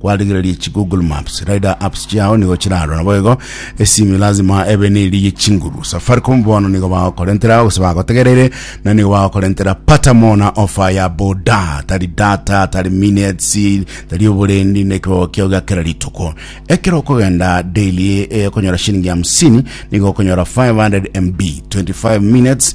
Kwarigereria chi Google Maps, Rider Apps chiao nigo chirarora naboigo esimi lazima ebe neri ye chinguru. Safaricom bono nigo bagokorentera gose bagotegereire na nigo bagokorentera pata mona offer ya boda tari data tari minutes tari oborendi na ekibogo kiao gia kera rituko. Ekero okogenda daily eh, okonyora shilingi hamsini nigo okonyora 500 MB 25 minutes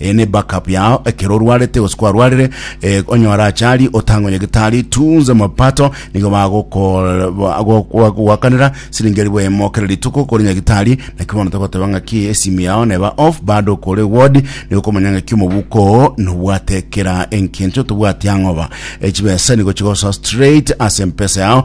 Eye ne back up yao ekero orwarete gose kwarwarire eh, onye orachari otange onye gitari tunze mapato nigo bagogoakanera siringi eribu emo kera rituko kore nyagitari naki bono togoteba ng'aki esimu yao neba off bado kore ward nigo komanya ng'aki omobuko oo nobwate kera enkinto tobwati ang'oba echibesa nigo chigosoa straight ase mpesa yao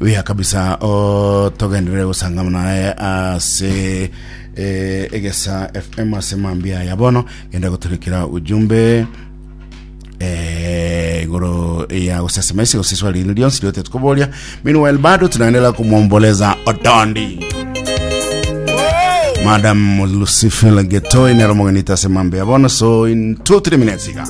Buya kabisa o togenderere gosangama naye ase eh, egesa fm ase mambia ya bono genda goturekera ujumbe eh, igoro ya gosesema ase gose swali rino rionsi riote tukoboria meanwhile bado tunaendelea kumwomboleza otondi madam lucifil getoi nero mogenita ase mambia ya bono so in 2 3 minutes iga